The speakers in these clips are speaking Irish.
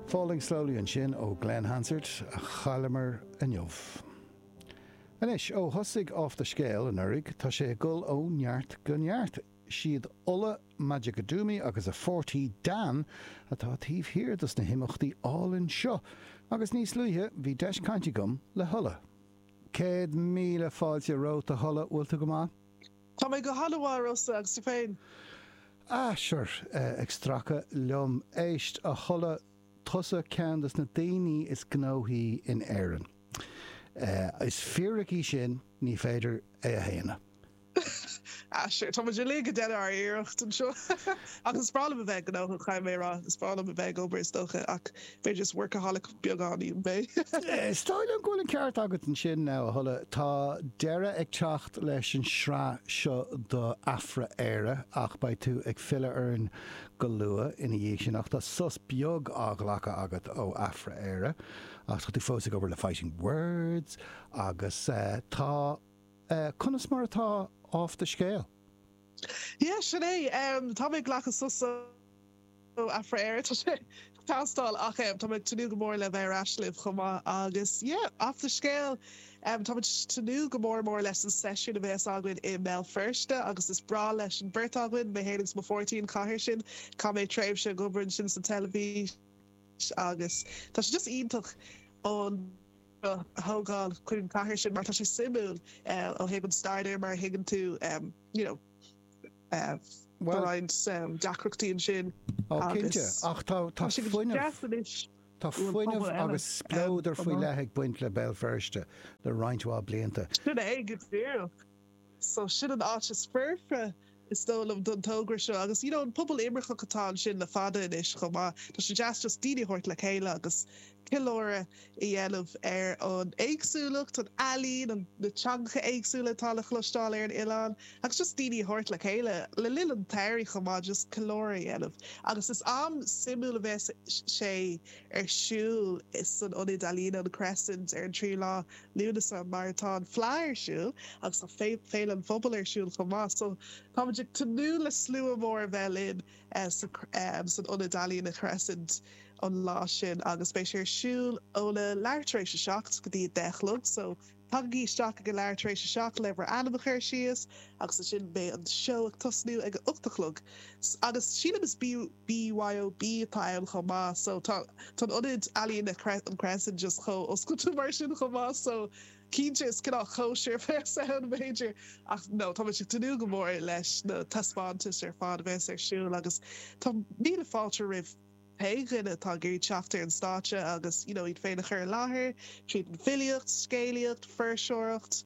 Falling Slowly ansin ó Glen Hansard a chailleamar inniu. Anois, ó thosaigh Off The Scale anuraidh tá sé ag dul ó neart go neart. Siad Ola Majekodunmi agus a páirtí Dan atá taobh thiar dos na himeachtaí álainn seo agus níos luaithe bhí deis caint agam le hOla. Céad míle fáilte romhat a Ola, bhfuil tú go maith? Tá mé go han-mhaith, a Rósa, agus tú féin? Ah sure, ag stracadh liom. Éist, a Ola, tusa ceann de na daoine is gnóthaí in Éirinn. Is fíric í sin, ní féidir é a shéanadh. Ah sure, táimid uilig ag déanamh ár n-iarracht anseo. Ach is breá liom a bheith gnóthach, caithfidh mé a rá. Is breá liom a bheith ag obair, is dócha, ach just workaholic beagáinín, mé. Is dóigh liom go bhfuil an ceart agat ansin now, a Ola. Tá deireadh ag teacht leis an sraith seo do Athrú Aeir ach beidh tú ag filleadh orainn go luath ina dhiaidh sin ach tá sos beag á ghlacadh agat ó Athrú Aeir ach tá tú fós ag obair le Fighting Words agus tá conas mar atá Off The Scale? Yeah, sin é. Tá mé ag glacadh sos ó. Ó Athrú Aeir, tá sé ag teastáil ach em tá mé ag tnúth go mór le bheith ar ais libh chomh maith agus yeah, Off The Scale, em tá muid ag tnúth go mór mór leis an seisiún a bheas againn i mBéal Feirste agus is breá leis an bheirt againn, mé fhéin agus mo pháirtí, an chathair sin. Chaith mé tréimhse ag obair ansin sa teilifís agus tá sé just iontach an seó a thógáil chuig an chathair sin mar tá sé suimiúil eh ó thaobh an stair de mar a thuigeann tú em you know, Tá roinnt deacrachtaí ansin agus tá sé go deas anois. Tá fuinneamh agus spleodar faoi leith ag baint le Béal Feirste le roinnt mhaith blianta. Sin é go díreach. So sin an áit is foirfe is dóigh liom don togra seo agus you know an pobal imirceach atá ansin le fada anois chomh maith. Tá sé deas just daoine a thabhairt le chéile agus ceiliúradh. a dhéanamh ar an éagsúlacht, an ealaín, an na teangacha éagsúla atá le chloisteáil ar an oileán agus just daoine a thabhairt le chéile le linn an tsamhraidh chomh maith just ceiliúradh a dhéanamh agus is am suimiúil a bheas sé ar siúl san ionad ealaíne an Crescent ar an 3ú lá Lúnasa mar atá an Fleadh ar siúl agus tá féile an phobail ar siúl chomh maith so táimid ag tnúth le slua mór a bheith linn. san Ionad Ealaíne an Crescent an lá sin agus beidh sé ar siúl óna leath tar éis a seacht go dtí a deich a chlog so tagaigí isteach ag a leath tar éis a seacht le bhur ainm a chur síos agus ansin beidh an seó ag tosnú ag a hocht a chlog agus sílim is BYOB atá ann chomh maith so tá tá an Ionad Ealaíne an Crescent just chomh oscailte mar sin chomh maith so Cinnte is cineál cóisir a bheas ann b'fhéidir ach nó, táimid ag tnúth go mór leis na taispeántais ar fad a bheas ar siúl agus tá míle fáilte roimh aon duine atá ag iarraidh teacht ar an stáitse agus you know iad féin a chur i láthair tríd an filíocht, scéalaíocht, fuirseoireacht,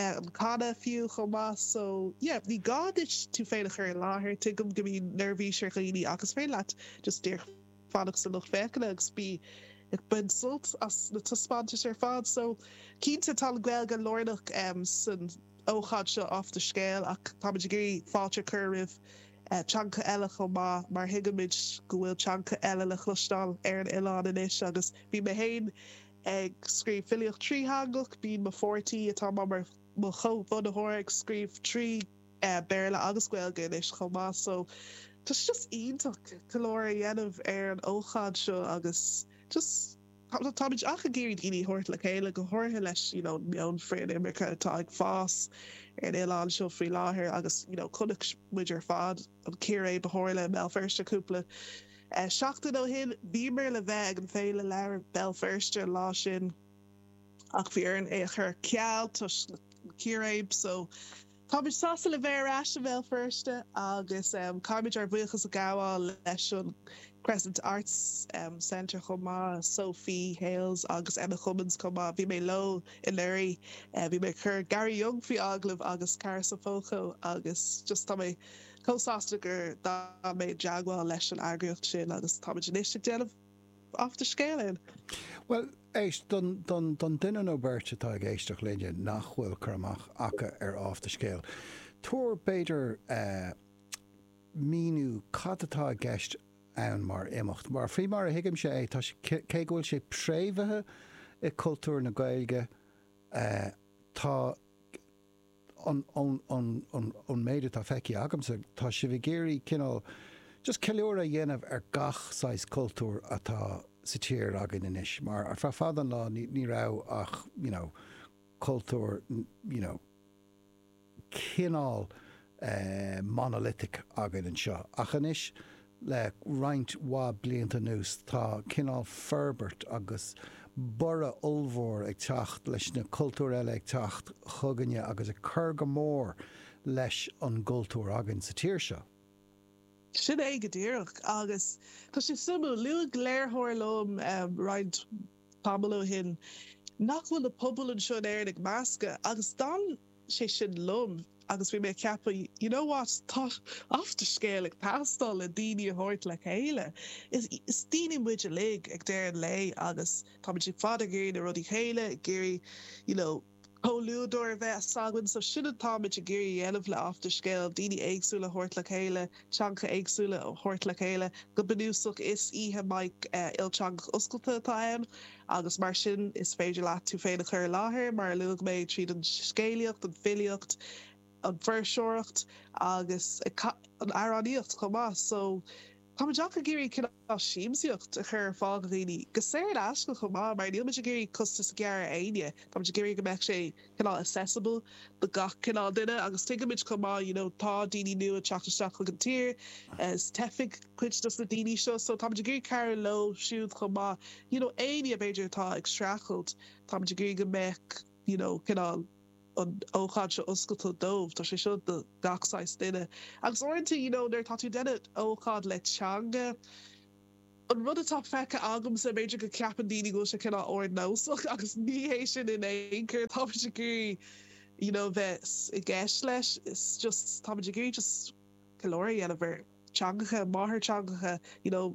an canadh fiú chomh maith so yeah ní gá duit tú féin a chur i láthair tuigim go mbíonn neirbhís ar dhaoine ach is féidir leat just díreach fanacht sa lucht féachana agus bí ag baint sult as na taispeántais ar fad. So cinnte tá an Ghaeilge lárnach san ócáid seo off the scale ach táimid ag iarraidh fáilte a chur roimh teangacha eile chomh maith mar thuigimid go bhfuil teangacha eile le cloisteáil ar an oileán anois agus bíonn mé féin ag scríobh filíocht trí theangach, bíonn mo pháirtní atá mar mo chomh-bhunaitheoir ag scríobh trí Béarla agus Gaeilge anois chomh maith so tá sé just iontach ceiliúradh a dhéanamh ar an ócáid seo agus just táimid ach ag iarraidh daoine a thabhairt le chéile, go háirithe leis you know meon frith-inimirce atá ag fás ar an oileán seo faoi láthair agus you know chonaic muid ar fad an círéib a tharla i mBéal Feirste cúpla eh, seachtain ó shin. Bhíomar le bheith ag an Féile Leabhar Béal Feirste an lá sin ach bhí orainn é a chur ar ceal toisc na círéib so Táimid sásta le bheith ar ais i mBéal Feirste agus caithfimid ár bhuíochas a ghabháil leis an Crescent Arts Centre chomh maith, Sophie Hales agus Emma Cummins chomh maith. Bhí mé leo anuraidh, bhí mé ag cur Gary Younge faoi agallamh agus Cara Sanfoco agus just tá mé chomh sásta gur d'fhan mé i dteagmháil leis an eagraíocht sin agus táimid anois ag déanamh Off the scale in. Bhuel, éist don, don, don duine nó beirt atá ag éisteacht linne nach bhfuil cur amach acu ar Off the Scale, tabhair, b'fhéidir, eh, míniú cad atá i gceist ann mar imeacht. Mar, faoi mar a thuigimse é, tá sé, cé go bhfuil sé préamhaithe i cultúr na Gaeilge, eh, tá, ón méid atá feicthe agamsa, tá sibh ag iarraidh cineál just ceiliúradh a dhéanamh ar gach saghas cultúr atá sa tír againn anois, mar ar feadh fada an lá ní raibh ach aon chultúr you know cineál eh monolithic againn anseo, ach anois. Le roinnt mhaith blianta anuas tá cineál forbairt agus borradh ollmhór ag teacht leis na cultúir eile ag teacht chugainne agus ag cur go mór leis an gcultúr againn sa tír seo. Sin é go díreach agus tá sé suimiúil. Luaigh léiritheoir liom roinnt tamall ó shin. Nach bhfuil na pobail anseo in Éirinn ag meascadh? Agus d'fhan sé sin liom agus bhí mé ag ceapadh, you know what, tá Off the Scéal ag teastáil le daoine a thabhairt le chéile. Is daoine muid uilig ag deireadh an lae agus táimid ar fad ag iarraidh na rudaí céanna, ag iarraidh, you know, comhluadar a bheith s'againn so sin atáimid ag iarraidh a dhéanamh le Off the Scéal, daoine éagsúla a thabhairt le chéile, teangacha éagsúla a thabhairt le chéile. Go bunúsach is oíche mic ilteangach oscailte atá ann agus mar sin is féidir leat tú féin a chur i láthair mar a luaigh mé tríd an scéalaíocht, an filíocht, an fuirseoireacht agus an amhránaíocht chomh maith so. Tá muid ach ag iarraidh cineál siamsaíocht a chur ar fáil do dhaoine, go saor in aisce chomh maith, mar níl muid ag iarraidh costas a ghearradh ar éinne. Tá muid ag iarraidh go mbeadh sé cineál accessible do gach cineál duine agus tuigeann muid chomh maith you know tá daoine nua ag teacht isteach chuig an tír is teifigh cuid dos na daoine seo so tá muid ag iarraidh cabhrú leo siúd chomh maith you know éinne b'fhéidir atá ag streachailt tá muid ag iarraidh go mbeadh you know cineál an ócáid seo oscailte dóibh. Tá sé seo do gach saghas duine. Agus uaireanta you know nuair atá tú ag déanamh ócáid le teanga, an rud atá feicthe agamsa, b'fhéidir go ceapann daoine go bhfuil sé cineál ardnósach agus ní hé sin in aon chor. Tá muid ag iarraidh you know bheith i gceist leis. Is just tá muid ag iarraidh just ceiliúradh a dhéanamh ar theangacha, máthairtheangacha, you know.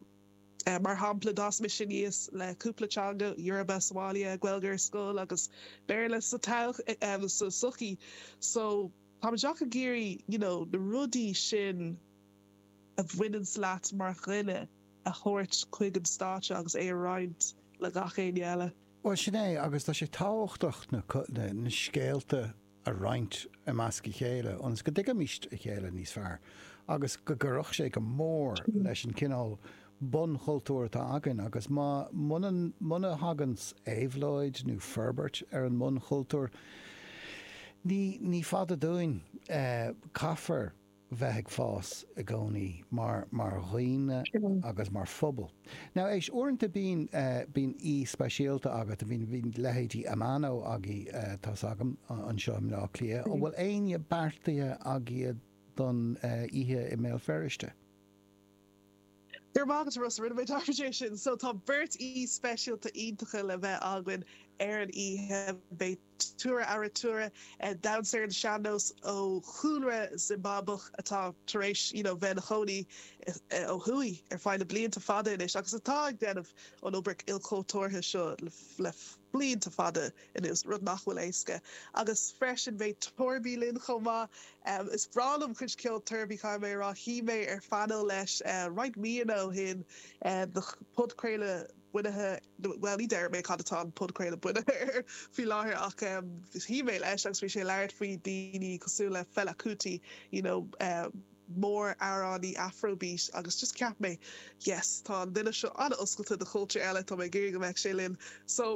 Mar shampla, d'fhás mise aníos le cúpla teanga, Yoruba, Somali, Gaeilge ar scoil agus Béarla sa tsochaí so táimid ach ag iarraidh you know na rudaí sin a bhaineanns leat mar dhuine a thabhairt chuig an stáitse agus é a roinnt le gach éinne eile. Bhuel, sin é agus tá sé tábhachtach na scéalta a roinnt i measc a chéile ionas go dtuigfimist a chéile níos fearr agus go gcuirfeadh sé go mór leis an cineál bun-chultúr atá againn agus má, muna, muna thaganns éabhlóid nó forbairt ar an mbun-chultúr ní, ní fada dúinn é, caithfear. bheith ag fás i gcónaí mar mar dhaoine agus mar phobal now éist uaireanta bíonn bíonn aoi speisialta agat bíonn bíonn leithéidí Amano agaibh tá's agam anseo i mBleá Cliath an bhfuil éinne beartaithe agaibh don oíche i mBéal Feirste? Go raibh maith agat a Rossa, rinne mé dearmad de sin! So tá beirt aoi speisialta iontacha le bheith againn ar an oíche. Beidh Tura Arutura, damhsóir ar an sean-nós ó chúlra Zimbeabuach atá tar éis you know bheith ina chónaí ó thuaidh ar feadh na blianta fada anois agus atá ag déanamh an obair ilchultúrtha seo le blianta fada anuas, rud nach bhfuil éasca. Agus freisin beidh Toirby linn chomh maith. Is breá liom cuid ceoil Toirby, caithfidh mé a rá. Shuigh mé ar phaineal leis roinnt míonna ó shin do phodchraoladh bunaithe, bhuel ní déarfaidh mé cad atá an podchraoladh bunaithe air faoi láthair ach shuigh mé leis agus bhí sé ag labhairt faoi daoine cosúil le Fela Kuti, you know. mór-amhránaí Afrobeat agus just cheap mé yes tá an duine seo an-oscailte do chultúr eile tá mé ag iarraidh go mbeadh sé linn so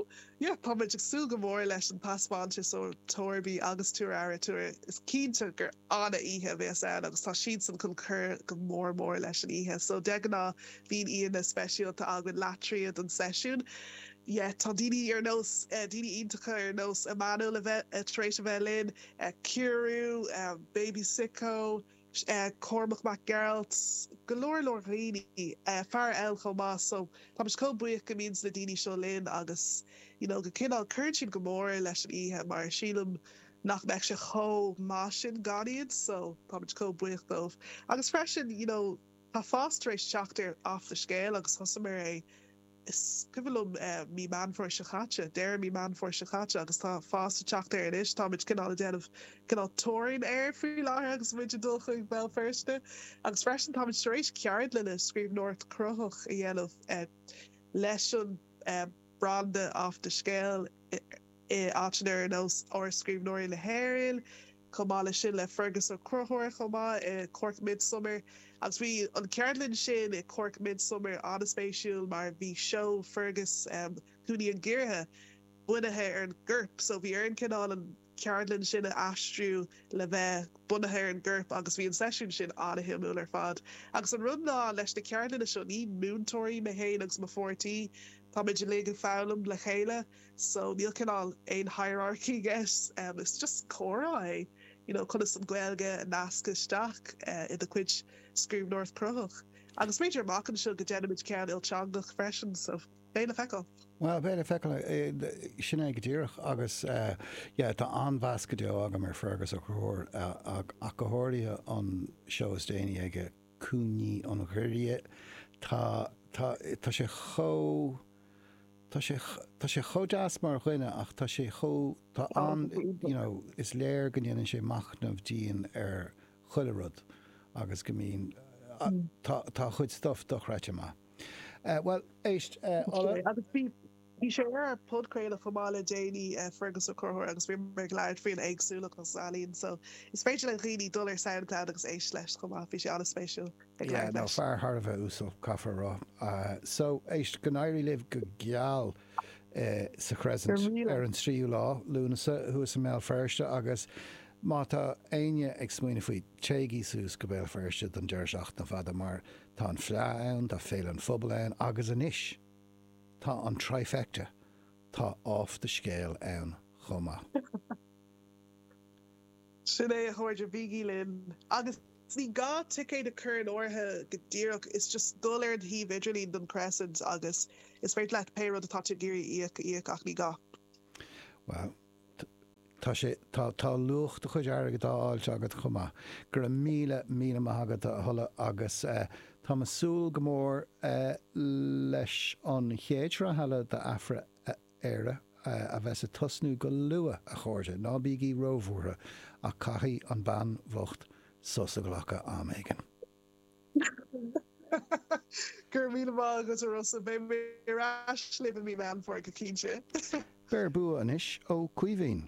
yeah tá muid ag súil go mór leis an taispeántas ó Toirby agus Tuar Aire Tuar is cinnte gur an-oíche a bhéas ann agus tá siadsan chun cur go mór mór leis an oíche so de ghnáth bíonn aíonna speisialta againn leath tríd an seisiún yeah tá daoine ar nós daoine iontacha ar nós Emmanuel atá tar éis a bheith linn Ciarraí, Baby Sicko, Cormac Mac Gearailt, go leor leor dhaoine, fear eile chomh maith so tá muid chomh buíoch go mbíonn na daoine seo linn agus you know go cineál cuireann siad go mór leis an oíche mar sílim nach mbeadh sé chomh maith sin gan iad so tá muid chomh buíoch díobh agus freisin you know tá fás tar éis teacht ar Off the Scale agus thosaíomar é Is cuimhin liom mí Meán Fómhair seo caite, deireadh mí Meán Fómhair seo caite agus tá fás ag teacht air anois, táimid cineál ag déanamh cineál teorainn air faoi láthair agus muid ag dul chuig Béal Feirste. Agus freisin táimid tar éis ceardlanna scríbhneoireacht cruthaitheach a dhéanamh leis an branda Off the Scale i áiteanna ar nós Áras Scríbhneoirí na hÉireann, Chomh maith leis sin le Fearghas Ó Conchúir chomh maith i Cork Midsummer agus bhí an ceardlann sin i Cork Midsummer an-spéisiúil mar bhí seó Fearghas um Cúinní an Ghiorria bunaithe ar an gcorp so bhí orainn cineál an ceardlann sin a aistriú le bheith bunaithe ar an gcorp agus bhí an seisiún sin an-shuimiúil ar fad agus an rud ná leis na ceardlanna seo ní múinteoirí mé fhéin agus mo pháirtí táimid uilig ag foghlaim le chéile so níl cineál aon hierarchy i gceist em is just comhrá é you know conas an Ghaeilge a nascadh isteach eh i do chuid scríbhneoireacht cruthaitheach agus b'fhéidir amach anseo go déanfaimid ceann ilteangach freisin so beidh le feiceáil. Bhuel beidh le feiceáil eh sin é go díreach agus eh yeah tá an-mheas go deo agam ar Fearghas Ó Conchúir eh ach go háirithe an seó is déanaí aige Cúinní an Ghiorria. Tá, tá, tá sé chomh, tá sé, tá sé chomh deas mar dhuine ach tá sé chomh, tá Tá, an, tá sé iontach. You know, is léir go ndéanann sé machnamh dian ar chuile rud agus go mbíonn, a, tá, tá a chuid stuff dochreidte maith. Eh, bhuel, éist, eh, Tá sé, Ola. agus bhí. Bhí sé ar ár podchraoladh chomh maith le déanaí, Fergus Ó Conchúir, agus bhíomar ag labhairt faoin éagsúlacht agus an ealaín, so is féidir le dhaoine dul ar Soundcloud agus éist leis chomh maith, bhí sé an-spéisiúil ag Yeah, labhairt no, leis. fear thar a bheith uasal, caithfear a rá. So, éist, go n-éirí libh go geal sa Crescent Go míle. ar an 3ú lá Lúnasa thuas i mBéal Feirste agus má tá éinne ag smaoineamh faoi, téigí suas go Béal Feirste don deireadh seachtaine fada mar tá an Fleadh ann, tá Féile an Phobail ann agus anois, Tá an trifecta tá Off the Scéal ann chomh maith. Sin é a chairde, bígí linn! Agus ní gá ticéad a chur in áirithe go díreach, just dul ar an shuíomh idirlín don Crescent agus is féidir leat pé rud atá tú ag iarraidh a íoc a íoc, ach ní gá. Wow. Tá sé, tá, tá luach do chuid airgead á fháilt agat chomh maith. Go raibh míle, míle maith agat a Ola agus eh táim a' súil go mór eh leis an chéad sraith eile do Afra-Éire eh a bheas a' tosnú go luath a chairde, ná bígí róbhuartha ach caithfidh an bean bhocht sos a ghlacadh am éigin. Go raibh míle maith agat a Rossa. Beidh mé ar ais libh i mí Meán Fómhair go cinnte. Beir bua anois, a Chaoimhín.